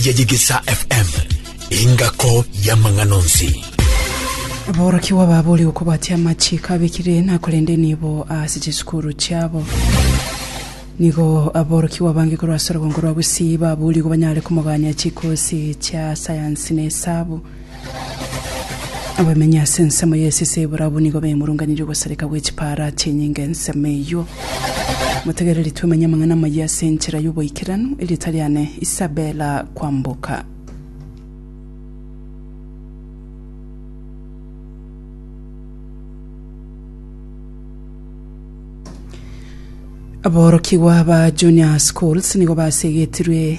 ya Yegesa FM, engako y'amang'ana onsi. Aborokigwa babo ore gokobatia amachiiko abekire na korende nibo ase chisukuru chiabo. Nigo aborokigwa bange korwa ase orogongo rwa Gusii baburigo banyare komogania chikosi chia sayansi na esabu. Abamenyi ase ensemo y'esese y'Ebola abwo nigo baimurunganirie ogosareka gwe chipaara achia enyinga ensemo eyio. Motegereri twemenye amang'ana amayia ase enchera y'oboikeranu, erieta riane Isabella Kwamboka. Aborokigwa ba Junior Schools nigo basegetirwe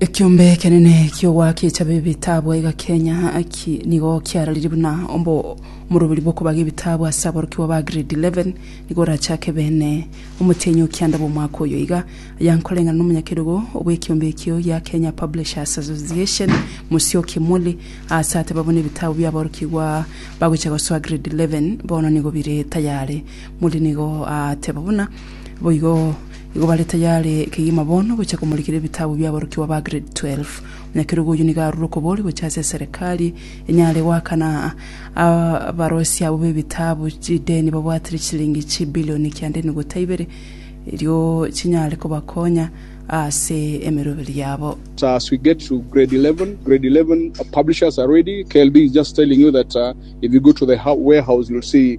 Ekiombe ekenene ki'ogoakia echabe ebitabu aiga Kenya ki nigo kiarorire buna ombo omoroberi bw'okobaga ebitabu ase aborokigwa ba grade 11 nigo orachake bene omotienyi o kianda bw'omwaka oyo iga aya nkoreng'ana n'omonyakerogo bw'ekiombe ekio gia Kenya Publishers Association Musyoki Muli aase ateba buna ebitabu bia aborokigwa bagocha gosoa grade 11 bono nigo bire tayare Muli nigo ateba buna boigo Igo bare tayare kegima bono gochia komorikera ebitabu bi'aborokigwa ba Grade 12. Nyakerugo oyio nigo arure okobori gochia ase eserekari enyare goakana abaroisia abwo b'ebitabu chideni babwatire chichilingi chibilioni kianda enugota ibere erio chinyare kobakonya ase emeroberi yabo. As we get to grade 11, grade 11 publishers are ready, KLB is just telling you that if you go to the warehouse you'll see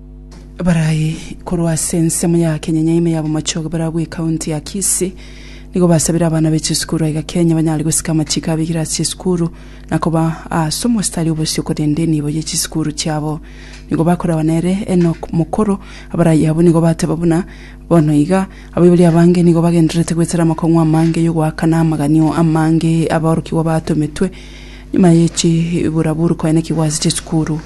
Abarai korwa ase ensemo ya Kenyenya ime ya bomochoge barabwo ekaunti ya Kisii nigo basabire abana be chisukuru aiga Kenya banyare gosika amachiko abegire ase chisukuru na koba ase omositari obosio korende enibo ye chisukuru chiabo nigo bakoragwa nere Enock Mokoro abarai abwo nigo bateba buna bono iga abaibori abange nigo bagendererete goetera amakong'u amange y'ogoakana amaganio amange aborokigwa batometwe Nyuma ye chibura buru koe na kigwasi chie sukuru,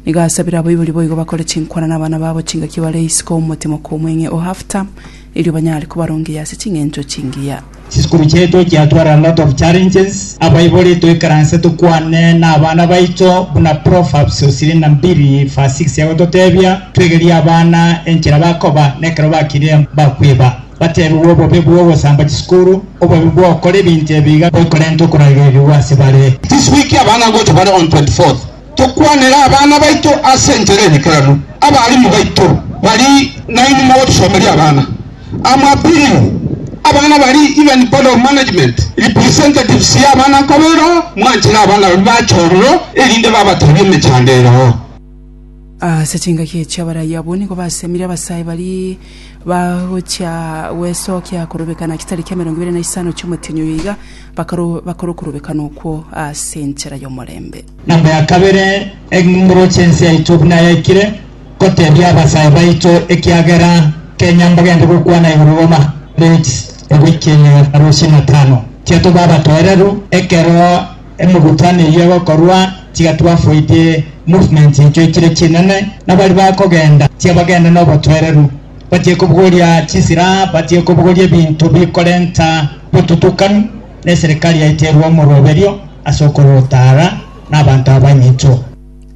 nigo asabire abaibori boigo bakore chinkwana nabana babo chingaki bare isiko omotemo komweng'e o half term, erio banyare kobarongeria ase ching'encho chingiya. Chisukuru chiaito chiatware a lot of challenges, abaibori toikaranse tokwane nabana baicho buna Proverbs osiri na mbiri verse six egototebia, twegerie abana enchera bakoba, nekero bakire bakwiba. Bateebigwe obobe bw'ogosamba chisukuru, obobe bw'ogokora ebinto ebi iga bikorenta okoragerigwa ase bare. This week abana gocha bare on 24th tokwanere abana baito ase enchera eyekeranu. Abalimu baito bari nainwe mogotosomeria abana amo appealing abana bari even board of management representatives y'abana nkoba ero mwanchire abana baria bache ororo erinde babatebie emechando ero. Ase chingaki echi abarai abwo nigo basemire abasae baria bagochia gwesokia korobekana chitari kia emerongo ebere na isano chi'omotienyi oyo iga bakaro bakore okorobekana okwo ase enchera y'omorembe. Namba ya kabere, eng'umuro chi'ense yaito buna yaikire gotebia abasae baito ekiagera kenya mbagende gokwana igoro roma Leeds ebuikia ime na rusia na tano. Tiatoba abatoereru ekero. Emegutano eyio egokorwa tiga twafoidie movement enchio echire chinene, na baria bakogenda tiga bagende nobotoereru, batige kobogoria chisilaha, batige kobogoria ebinto bikorenta botutukanu, na eserikari yaito erue omoroberio ase okorota ara na abanto abanyicho.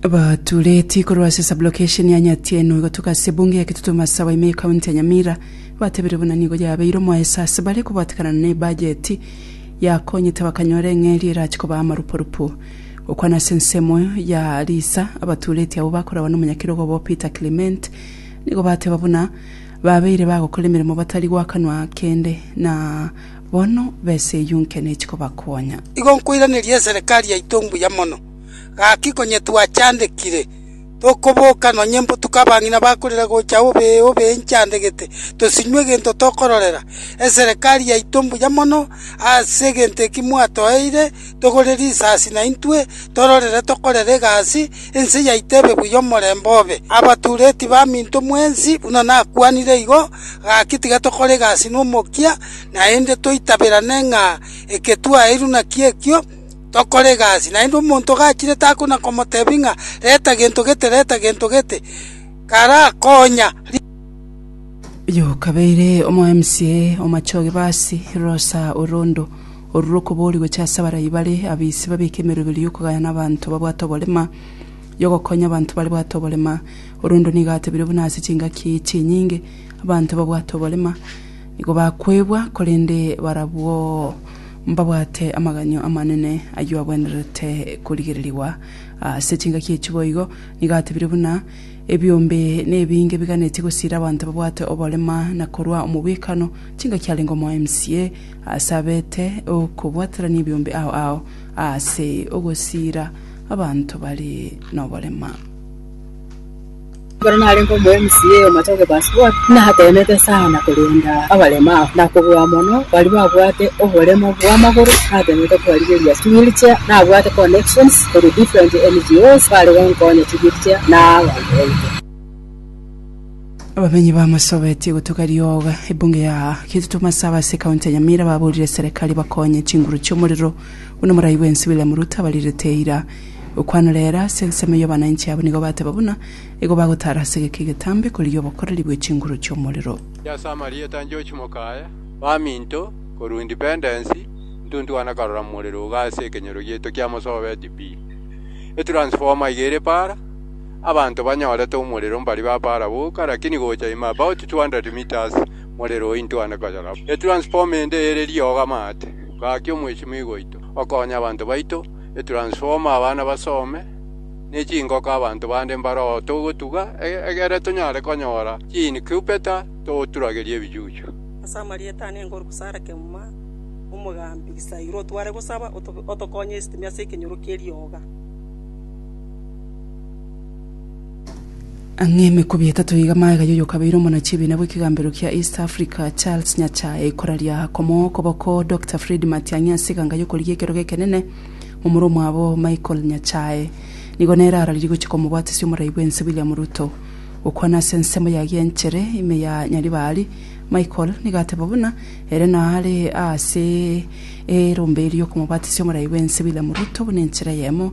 Abatureti korwa ase sub-location ya Nyatienwa gotuka ase ebunge ya Kitutu Masawa ime ye county ya Nyamira batebiire buna nigo yabeire omoeso ase bare kobatekanana ne ebajeti yakonyete bakanyora eng'eria erache kobaa amaruporupo. Gokwana ase ensemo ya Lisa, abaturetie abwo bakoragwa n'omonyakerogo obo Peter Clement nigo bateba buna babeire bagokora emeremo batari gwakanwa kende na bono besa eyio nke nechi kobakonya. Igo nkoiraneria eserekari yaito mbuya mono, gaki konyetwachandekire. Tokoboka nonye mbotuke abang'ina bakorire gocha obe obe inchandegete, tosinywe egento tokororera. Eserekari yaito mbuya mono ase egento eki mwatoeire, togore risasi naintwe tororere tokorere egasi, ense yaito ebe buya omorembe obe. Abatureti baminto mwensi buna nakwanire igo, gaki tiga tokore egasi nomokia, naende toitaberane ng'a eke twaeirwe nakio ekio, tokore egasi. Naende omonto ogachire takona komotebia ng'a reta gento gete, reta gento gete, karakonya. Oyo okabeire omo mca o Machoge Basi, Rosa Orondo, orure okobori gocha ase abarai bare abise babeke emeroberi y'okogaya na abanto babwate oborema, y'ogokonya abanto bare bwate oborema. Orondo nigo atebire buna ase chingaki chinyinge abanto babwate oborema nigo bakwebwa korende barabwo. mbabwate amaganyo amanene ayio agwenerete korigererigwa. Ase chingaki echi boigo nigo atebire buna, Ebiombe nebinge biganetie gosiira abanto babwate oborema na korua omobwekano, chingaki arenge omoemsie ase abete okobwaterania ebiombe ao ao ase ogosiira abanto bare noborema. Ekero narenge omoMCA o Matoke Pascual, nateemete sana korenda abaremu abo, na kobua mono baria babwate oboremo bw'amagoro, nateemete kobarigereria ching'irichia, nabwate connections korwa different NGOs bare gonkonya ching'irichia na abanto baito. Abamenyi bamasobetie gotuga rioga ebunge ya Kitutu Masaaba ase ekaunti ya Nyamira baburire serekari bakonye chinguru chi'omorero buna morai bwensi William Ruto abarirete eira. Okwana rero ase ensemo y'obonainchi abo nigo bateba buna igo bagotaara ase egeka egetambe korigia obokoreri bwe chinguru chi'omorero. Inche ase amarieta 'George Mokaya, baminto, korwa Independence, ntuntua na karora morero iga ase ekenyoro gieto kia Mosobeti pi. E transformer iga ere para, abanto banyorete omorero mbari ba para boka lakini gocha ime about 200 metres morero ointua na koyora bo. E transformer ende ere riogo amaate, gaki omweshimiwa oito okonye abanto baito. etransformer abana basome, ne chingoko abanto bande mbare oo togotuga, egere tonyare konyora chiincubator toturagerie ebichuchu. Ase amarieta ane ngoruka Sarah Kemuma, omogambi Gisairo, otware gosaba otokonye esitimi ase ekenyoro kerioga. Ang'e emekubi etato iga magega y'oyokabeire omonachi ebiina bw'ekegambero kia East Africa Charles Nyachae koraria komoa okoboko Doctor Fred Matiang'i ase eganga y'okorigia ekerogo ekenene momura omwabo Michael Nyachae nigo nere araririe gochia komobwatisia omorai bw'ense William Ruto gokwana ase ensemo ya gianchere ime ya Nyaribari Michael nigo ateba buna ere naare aase erombe eri y'okomobwatisia omorai bw'ense William Ruto buna enchera eyemo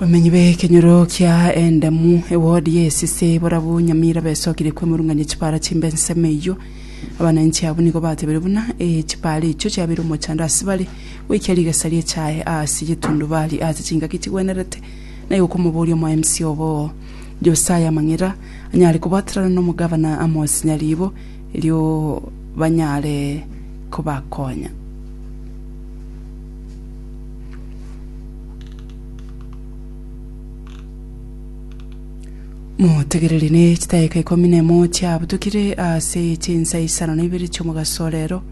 Bamenyi b'ekenyoro kia Endemu, ewodi y'esese, barabwo Nyamira besokirie kwemurung'ania chipaara chimbe ensemo eyio. Abananchi abwo nigo batebirie buna ee chipaara echio chiabeire omochando ase bare, goikia rigesa ri'echae aase y'etundubari aase chingaki chigwenerete, na igo komoboria omoemsi obo Josiah amang'era anyare kobwaterana n'omogavana Amos Nyaribo, erio banyare kobakonya. motegereri ne chidakika ikomi na emo chiabutukire ase chinsa isano na ibere chiomogaso o rero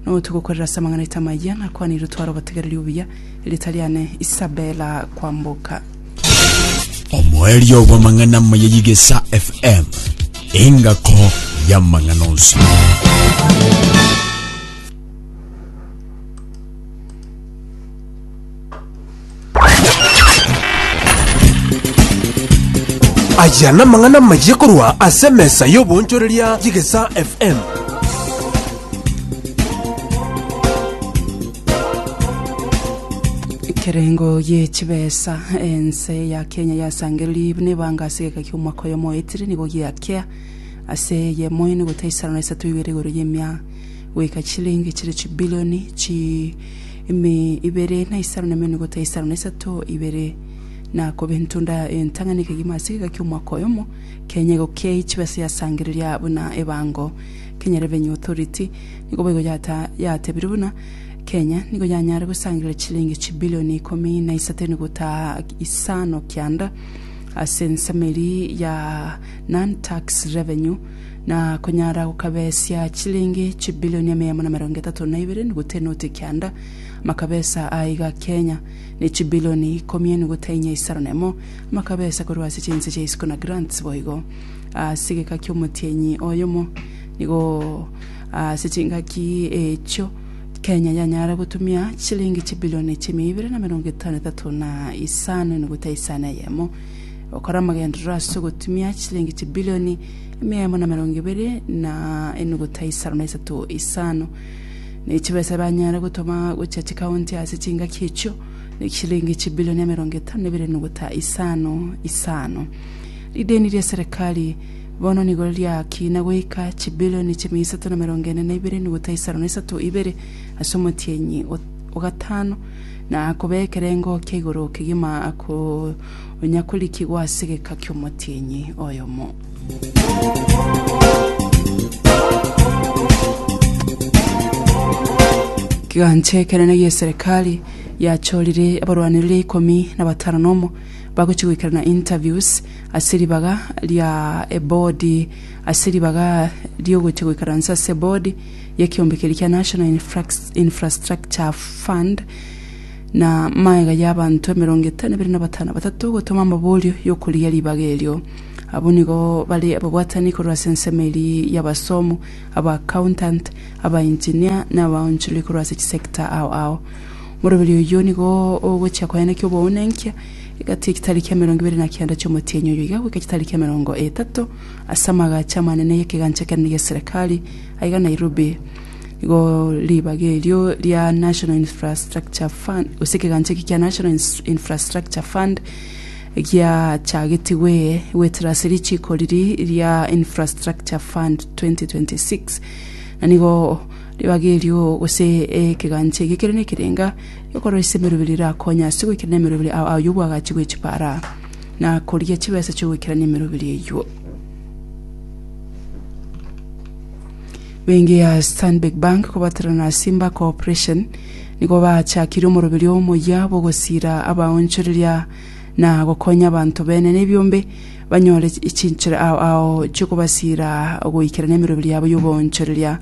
notogokorera ase amang'ana aito amaya nakwanire otware obotegereri obuya erita riane isabela kwamboka omoerio bw'amang'ana amaya y'igesa fm engako y'amang'ana onsi Aya namang'ana amayia korwa ase emesa y'oboonchoreria y'Egesaa FM. Ekerengo gie chibesa ense ya Kenya yasangeriri buna ebanga ase egeka kia omwaka oyo moetire nigo giakea ase eyemo ene gota isano na isato igere igoro y'emia goika chilingi chire chibilioni chi Ime ibere na isano na emenwe gota isano na isato ibere, na kobe entunda entang'ani ekegima ase egeka ki'omwaka oyomo, kenya igo kiai chibe ase yasangereria buna ebango, kenya rebe new authority, nigo boigo yata yatebirie buna, kenya nigo yanyare gosangereria chilingi chibilioni ikomi na isato enugota isano kianda ase ensemo eria ya non-tax revenue, na konyara gokabesia chilingi chibilioni emeamo na emerongo etato na ibere enuguta enoti ekianda, amakabesa aa iga Kenya, na echibilioni ikomi enuguta inya isano na emo, amakabesa korwa ase chinse chia isiko na grants boigo. Ase egeka ki'omotienyi oyomo nigo ase chingaki echio Kenya yanyara gotumia chilingi chibilioni chimia ibere na emerongo etano na etato na isano enuguta isano eyemo, gokora amagenderero ase ogotumia chilingi chibilioni emia emo na emerongo ebere na enuguta isano na isato isano ne chibesa ebanyare gotoma gochia chikaunti ase chingaki echio ne chilingi chibilioni emerongo etano na ebere enuguta isano isano rideni ria serikali bono nigo riakina goika chibilioni chimia isato na emerongo ene na ibere enuguta isano na isato ibere ase omotienyi o- ogatano na kobekera engokia igoro kegima ako onya korikigwa ase egeka ki'omotienyi oyomo. Kigancha ekenene gi'eserekari yachorire abarwanereri ikomi na batano nomo bagochia goikerana interviews ase ribaga ria ebodi ase ribaga ri'ogochia goikaransa ase ebodi y'ekeombe keria kia National Infrastructure Fund na magega y'abanto emerongo etano ebere na batano batato gotoma amaborio y'okorigia ribaga erio. Abwo nigo bare ababwatani korwa ase ensemo eria y'abasomu, aba accountant, aba engineer, na abaonchorori korwa ase chisector ao ao. Omoroberio oyio nigo ogochia koenekia oboonenkia egati y'echitari kia emerongo ebere na kenda chi'omotienyi oyo iga goika chitari kia emerongo etato ase amagacho amanene y'ekegancha kenene gi'eserekari aiga Nairobi. Igo ribaga erio ria National Infrastructure Fund, gose ekegancha eke kia National Ins- Infrastructure Fund giachagetigwe goetera ase richiko riri ria Infrastructure Fund 2026 na nigo ribaga erio gose ekegancha eke kere nekerenga ekorwa ase emeroberi erakonye ase goikerania emeroberi ao aywo bwagachigwe chipara na korigia chibesa chio goikerania emeroberi eywo. Bengi ya Stanbic Bank kobatera na Simba Cooperation nigo baachakirie omoroberio omoyia bw'ogosiira abaonchoreria na gokonya abanto bene nebiombe banyore chinchera ao ao chi'okobasiira goikera nemiroberio yabo y'oboonchoreria.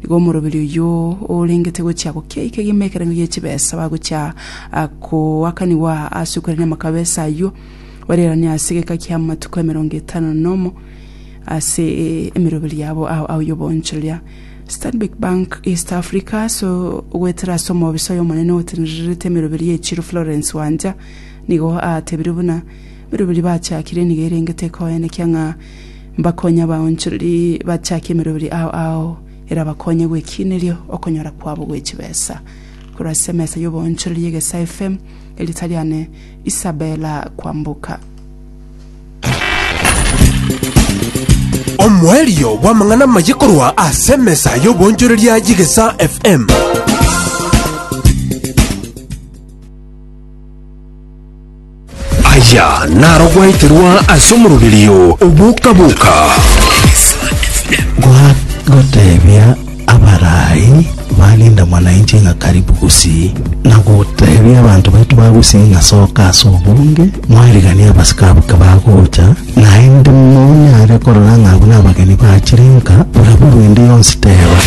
Nigo omoroberio oyio orengete gochia gokia eke egima ekerengo gie chibesa bagochia koakanigwa ase okwerania amakabesa ayio barerane ase egeka ki'amatuko emerongo etano nomo. ase emeroberi yabo ao y'obonchoreria. Stanbic Bank East Africa ase ogoetera ase omobisa oyo omonene otenererete emeroberi ye chiro Florence Wanja nigo aatebire buna emeroberi bachakire nigo erengete ekoenekia ng'a mbakonye abaonchoreri bachake emeroberi ao ao erabakonye gwekineria okonyora kwabo gwe chibesa. Korwa ase emesa y'obonchoreria Egesa FM erita riane Isabella Kwamboka. Omoerio bw'amang'ana amaye korwa ase emesa y'obonchoreria y'Egesa FM. Aya narogweterwa ase omoroberio oboka-boka. Goteebia Abarai barinda mwana inche ng'a karibu gusii, na gotebia abanto baito ba gusii ng'a soka ase obonge, mwariganie abasike abo kebagocha, naende monyare korora ng'a abwo nabageni bachire nka, bw'eraburwe ende yonsi teba.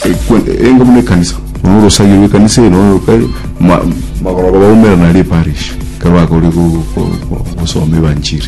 Ekwe- enga buna ekanisa nonya orosagio rwa ekanisa eye nonya oka- ma- magoroba baumera na riparish ekero bakoria go- go- go- gosoma evanchiri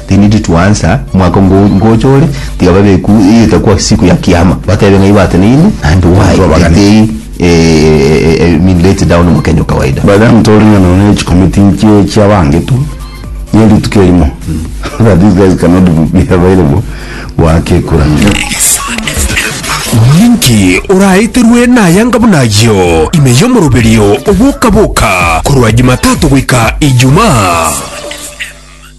Tindi to answer mwako ngo ngocha ore tiga babeku itakua siku ya kiama batebe ng'a ibateneine and why Nigo abagani. tetei eh, eh, mi let down mokenya okawaida. By the time tore ng'a nonya ne chikomiti nchie chia bange tu ne rituko erimo that these guys cannot be available goaka ekura. Ninki oraeterwe nayanga buna ayio ime y'omoroberio oboka boka korwa Jumatatu goika Ijumaa?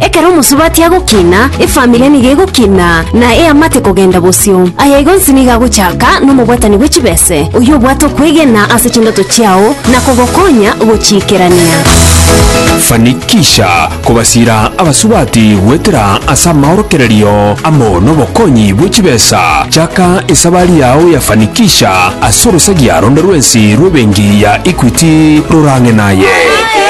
Ekero omosubati agokina, efamiri nigo egokina, na eamate kogenda bosio. Aya igo onsi nigo agochaka nomobwatani bwe chibese, oyio obwate okwegena ase chindoto chiao na kogokonya gochiikerania. Fanikisha kobasiira abasubati goetera ase amaorokererio amo nobokonyi bwe chibesa. Chaka esabari yao ya Fanikisha ase orosagia ronde rwensi rw'ebenki ya Equity rorang'e naye.